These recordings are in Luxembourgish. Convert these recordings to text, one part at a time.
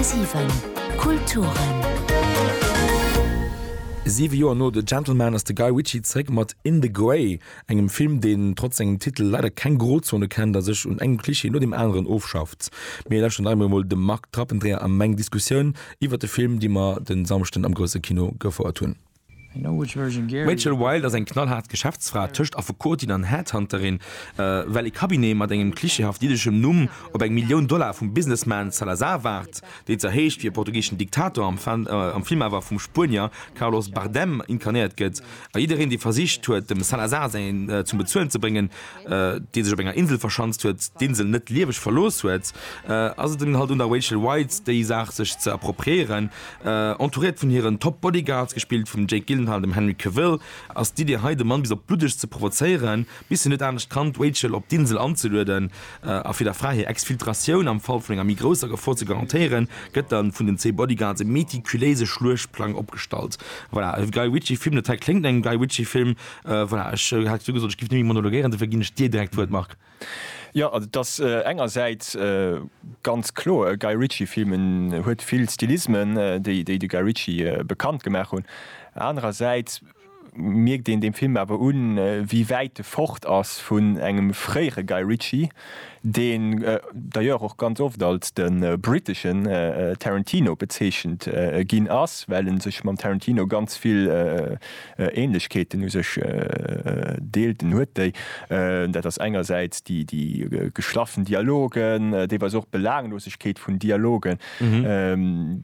10,7 Kulturen. Siwe Joer no The Gentleman ass de Guy Ritchie zeréck mat In the Grey, engem Film, deen trotz sengem Titel leider keng Grozone kennt a sech un engem Klischee no deem aneren ofschafft. Mir lauschteren nach eemol emol dem Marc Trappendreher a meng Diskussioun iwwert de Film, déi mer de Samschden am grousse Kino gefouert hunn. D'Rachel Wilde ass eng knallhaart Geschäftsfra tëscht Affekotin an Headhunterin, well ee Cabinet mat engem klischeehaft jiddeschem Numm op eng Millioun Dollar vum Businessman Salazar waart, deen zwar heescht wéi e portugiseschen Diktator, am Film awer vum Spuenier Carlos Bardem inkarnéiert gëtt, a jiddereen, dee versicht huet, dem Salazar säin zum Bezuelen ze bréngen, dee sech op enger Insel verschanzt huet, d'Insel net lieweg verlooss huet, ass et dann halt un der Rachel Wilde, déi Saach sech ze appropriéieren. Entouréiert vun hiren Top Bodyguards, gespillt vum Jake Gyllenhaal, dem Henry Cavill, ass d'Iddi hei de Mann bis op d'Bluddegst ze provozéieren, bis hien net anescht kann, d'Rachel op d'Insel anzelueden, a fir der Fra hir Exfiltratioun am Fall vun enger méi grousser Gefor ze garantéieren, gëtt da vun den zwee Bodyguards e meticuléise Schluechtplang opgestallt. Voilà, e Guy Ritchie Film, dat hei kléngt no engem Guy Ritchie Film. Voilà, ech hat jo gesot, ech géif net méi monologuéieren, dofir ginn ech dir direkt d'Wuert, Marc. Jo, et ass engersäits ganz kloer e Guy Ritchie-Film, en huet vill Stilismen, déi de Guy Ritchie bekannt gemaach hunn. Anerersäits mierkt een deem Film awer un, wéi wäit e fort ass vun engem fréiere Guy Ritchie, deen d'ailleurs och ganz oft als de britteschen Tarantino bezeechent ginn ass, well e sech mam Tarantino ganz vill Ähnlechkeeten u sech deelten, huet déi, dat ass engersäits déi geschlaffen Dialogen, deelweis och d'Belaanglosegkeet vun Dialogen.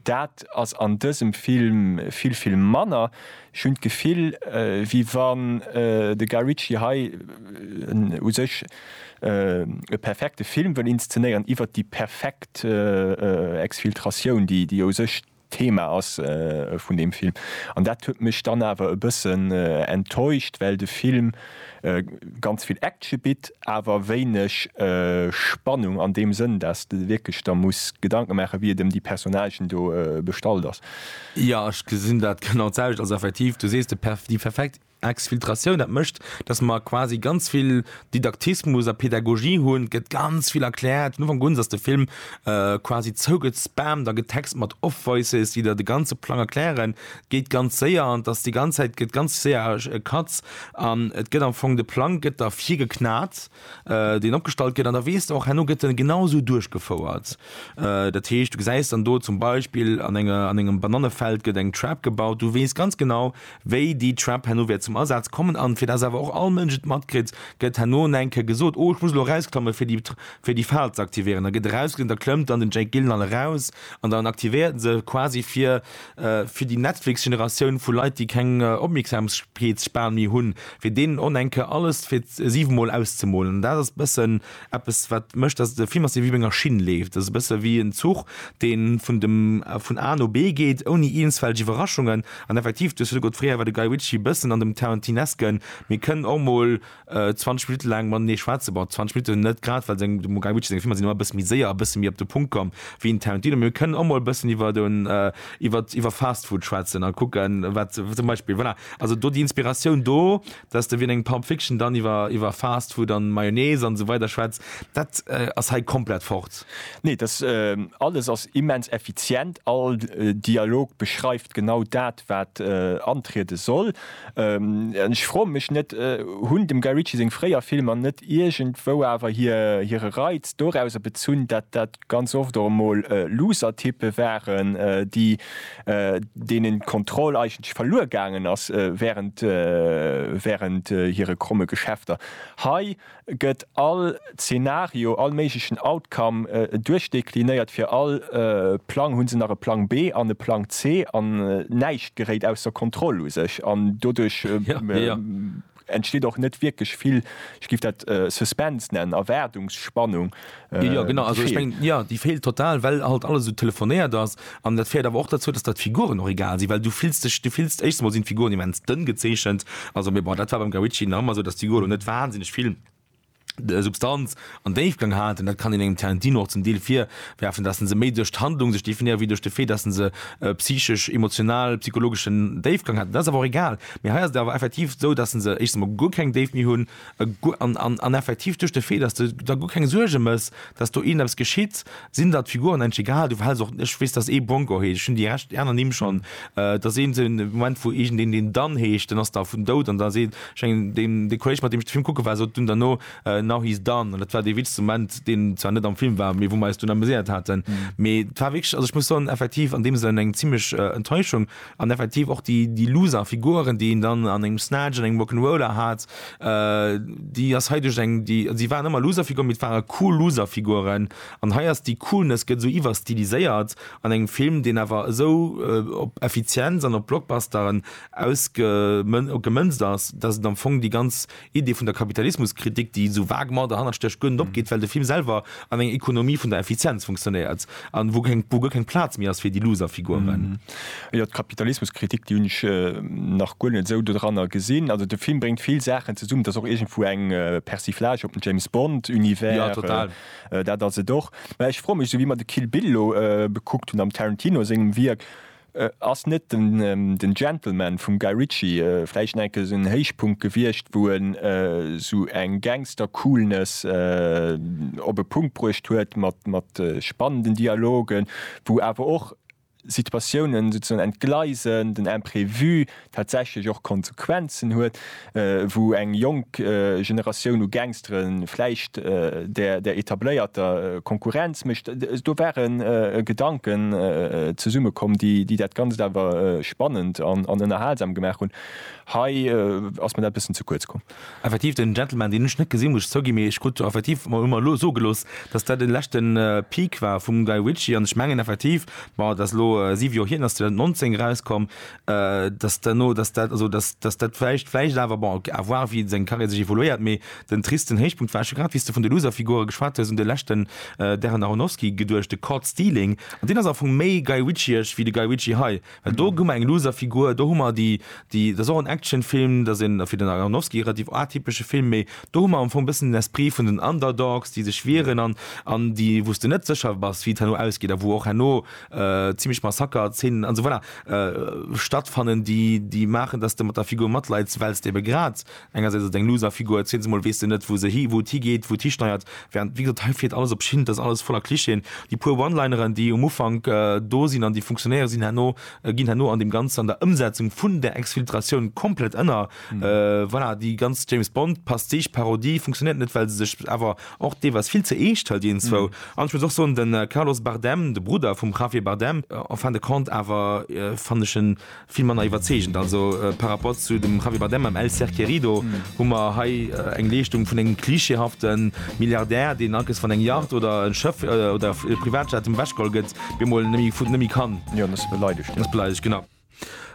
Dat ass an dësem Film vill, vill manner. Ech hunn d'Gefill, wéi wann de Guy Ritchie hei u sech e perfekte Film wëll inszenéieren iwwert déi perfekt Exfiltratioun, déi u sech Thema ass vun deem Film. An dat huet mech dann awer e bëssen enttäuscht, well de Film ganz vill Action bitt, awer wéineg Spannung an deem Sënn, dass de wierklech der muss Gedanke maachen, wéi et ëm déi Personnagen do bestallt ass. Jo, ech gesinn dat genau d'selwecht. Also effektiv, du sees, déi perfekt Exfiltratioun, dat mécht, datt mer quasi ganz vill Didaktismus a Pedagogie hunn, et gëtt ganz vill erkläert. Vun Ufank un ass de Film quasi zougespammt a getext mat Off-Voices, déi der de ganze Plang erklären. Et geet ganz séier an et ass déi ganz Zäit gëtt ganz séier Cuts an et gëtt am Fong, de Plang gëtt der virgeknat, deen opgestallt gëtt an da weess de och, herno gëtt en genau esou duerchgefouert. Dat heescht, du gesäis dann do zum Beispill an enger, an engem Banannefeld gëtt eng Trap gebaut, du weess ganz genau, Wéi déi Trap herno wäert zum Asaz kommen an fir dass awer och all Mënsch et matkritt, gëtt herno en enke gesot, Oh, ech muss elo erausklammen, fir déi fir déi Fal ze aktivéieren. Da gëtt erausgeklammt, da klëmmt dann den Jake Gyllenhaal eraus an dann aktivéiert en se quasi fir fir déi Netflix-Generatioun vu Leit, déi keng Opmierksamkeetsspan méi hunn, fir deenen onenke alles fir siwe Mol auszemolen. An dat ass e bëssen Eppes wat mécht, datt et e Film ass, dee wéi op enger Schinn leeft. Ass e bësse wéi en Zuch, deen vun dem vun A no B geet, ouni iewensfällg Iwwerraschungen. An effektiv, du hues virdu gesot, fréier war de Guy Ritchie e bëssen an dem Tarantinesken. Mir kënnen och emol 20 Minutte laang matenee schwätzen. Bon, 20 Minutten net grad, well seng, dem Guy Ritchie seng Filmer sinn ëmmer e bësse méi séier a e bësse méi op de Punkt komm wéi en Tarantino. Mee mir kënnen och emol e bëssen iwwer en, iwwer, iwwer Fast Food schwätzen a kucken, wat zum Beispill, voilà. Also do déi Inspiratioun do. Dass de wéi an engem Pulp Fiction dann iwwer iwwer Fast Food an Mayonnaise an esou weider schwätz, dat ass hei komplett fort. Nee, dass alles ass immens effizient, all Dialog beschreift genau dat wat antriede soll. An ech froen mech net, hunn dem Guy Ritchie seng fréier Filmer net iergendwou awer hire Reiz dorauser bezunn dat dat ganz oft och emol looser Typpe waren, déi, deenen d'Kontroll eigentlech verluer gaangen ass während, während hire kromme Geschäfter. Hei gëtt all Zeenario, all méiglechen Outcome duerchdekliniert. Fir all Plang hu se nach e Plang B an e Plang C an näischt geréit ausser Kontroll u sech an doduerch, entsteet och net wierklech vill, ech giff dat Suspense nennen, Erwaardungsspannung, déi feelt. Jo, déi feelt total, well halt alles esou telefonéiert ass. An dat féiert awer och derzou, dass der d'Figuren och egal sinn, well du fills dech, du fills, éischtens emol sinn d'Figuren immens dënn gezeechent, also, mee bon, dat war beim Guy Ritchie nach ëmmer esou, dass d'Figur elo net wahnsinneg vill Substanz an Déifgang haten, dat kann een engem Tarantino och zum Deel virwerfen, dass en se méi duerch d'Handlung sech definéiert, wéi duerch de Fait, dass en se e psychesch, emotional, psychologeschen Déifgang haten. Dat ass awer och egal, mee hei ass et awer effektiv esou, dass en se éischtens emol guer keng Déift méi hunn an effektiv duerch de Fait, dass de der guer keng Suerge méchs, dass do eent eppes geschitt, sinn der d'Figuren engg egal. Du verhels och, ech weess, dass ee Bronco heescht, ech hunn déi Rescht, déi aner Nimm schonn, dass ee sou e Moment, wou iergendeen deen Dan heescht, den ass da vun dout an da seet. De Kolleg, mat deem ech de Film kucke war, sot dunn derno, Now he's done. An dat war dee witzegste Moment, deen zwar net am Film war, mee wou mer eis dunn amuséiert haten. Mee et war wierklech, also ech muss soen, effektiv an deem Sënn eng zimmlech Enttäuschung. An effektiv och déi Loser Figuren, déi een dann an engem Snatch, an engem Rock'n'Roller hat, déi ass hei duerch eng, déi, si waren ëmmer Loser Figuren, mee et ware cool Loser Figuren. An hei ass déi Coolness gëtt esou iwwerstiliséiert an engem Film, deen awer esou op Effizienz an op Blockbusteren ausgemënzt ass, datt et am Fong déi ganz Idee vun der Kapitalismuskritik, déi esou vague mat derhannert stécht, guer net opgeet, well de Film selwer an enger Ekonomie vun der Effizienz funktionéiert a wou guer keng Plaz méi ass fir déi Loserfiguren. Jo, d'Kapitalismuskritik, déi hunn ech nach guer net esou dodranner gesinn. Also de Film bréngt vill Saachen zesummen. Et ass och iergendwou eng Persiflage op den James Bond-Univers, dat ass et och. Mä ech froe mech, esou wéi mer de Kill Bill elo bekuckt hunn am Tarantino sengem Wierk, Ass net den Gentleman vum Guy Ritchie vläicht enke esou en Héichpunkt gewiescht, wou en esou eng Gangster-Coolness op e Punkt bruecht huet mat spannenden Dialogen, wou awer och Situatiounen souzesoen entgleisen, den Imprévu, tatsächlech och Konsequenzen huet, wou eng jonk Generatioun u Gangstere vläicht der etabléierter Konkurrenz mécht. Do ware Gedanken zesummekomm, déi dat Ganzt awer spannend an ënnerhalsam gemaach hunn. Hei ass mir dat e bëssen ze kuerz komm. Effektiv, den Gentleman, deen ech net gesinn, muss ech zouginn, mee ech krut effektiv, hu mer elo sou gelooss, datt dat de leschte Peak war vum Guy Ritchie an ech mengen effektiv, bon, dat ass elo siwe Joer hier, den ass 2019 erauskomm, dass duerno dass dat also dass dass dat vläicht vläicht awer bon à voir wéi seng Carrière sech évoluéiert mee den tristen Héichpunkt war scho grad wéi s de vun de Loserfigure geschwat hues un de leschten Darren Aronofsky geduecht de Caught Stealing an deen ass am Fong méi Guy Ritchieesch wéi de Guy Ritchie hei well do hu mer eng Loserfigur do hu mer déi déi dat ass och en Actionfilm dat ass een fir den Aronofsky relativ atypesche Film mee do hu mer am Fong e bëssen den Esprit vun den Underdogs déi sech wieren an an déi wou s de net sécher bass wéi et herno ausgeet a wou och herno zimmlech Massakerzenen an esou voilà stattfannen déi déi maachen dass de mat der Figur matleits wells de ebe grad engersäits ass et eng Loser Figur et zemol weess de net wou se hi wou et higeet wou et histeiert während wéi gesot hei fiert alles op Schinn et ass alles voller Clichéen déi puer One-Lineren déi um Ufank do sinn an déi funktionéiere sinn herno ginn herno an deem Ganzen an der Ëmsetzung vun der Exfiltratioun komplett ënner voilà déi ganz James Bond Pastiche Parodie funktionéiert net well se sech awer Och dee war vill ze eescht hei deenzwou. An ech muss och soen, den Carlos Bardem, de Brudder vum Javier Bardem, en fin de compte, awer fannen ech en vill manner iwwerzeegend. Also par rapport zu dem Javier Bardem am El Ser Querido hu mer hei eng Leeschtung vun engem klischeehafte Milliardär, deen alkes wann eng Yacht oder en Schëff oder e Privatjet em weggeholl gëtt, bemol nemme gutt, nemme kann. Jo, en ass beleidigt, jo. Ass beleidigt, genau.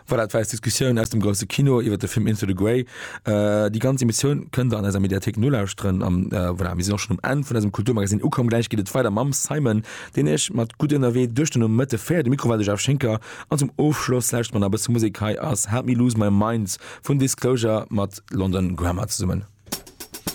Voilà, dat war eis Diskussioun aus dem Grousse Kino iwwer de Film Into the Grey. Äh, déi ganz Emissioun kënnt der an eiser Mediathek nolauschteren. Am äh, voilà, mir sinn och schon um Enn vun eisem Kulturmagasin ukomm. Gläich geet et weider mam Simon, deen iech mat gutt ënnerwee duerch den Nomëtte féiert. De Mikro war de Jeff Schinker an zum Ofschloss lauschtert mer nach e bësse Musek. Hei ass Help Me Lose My Mind vun Disclosure mat London Grammar zesummen.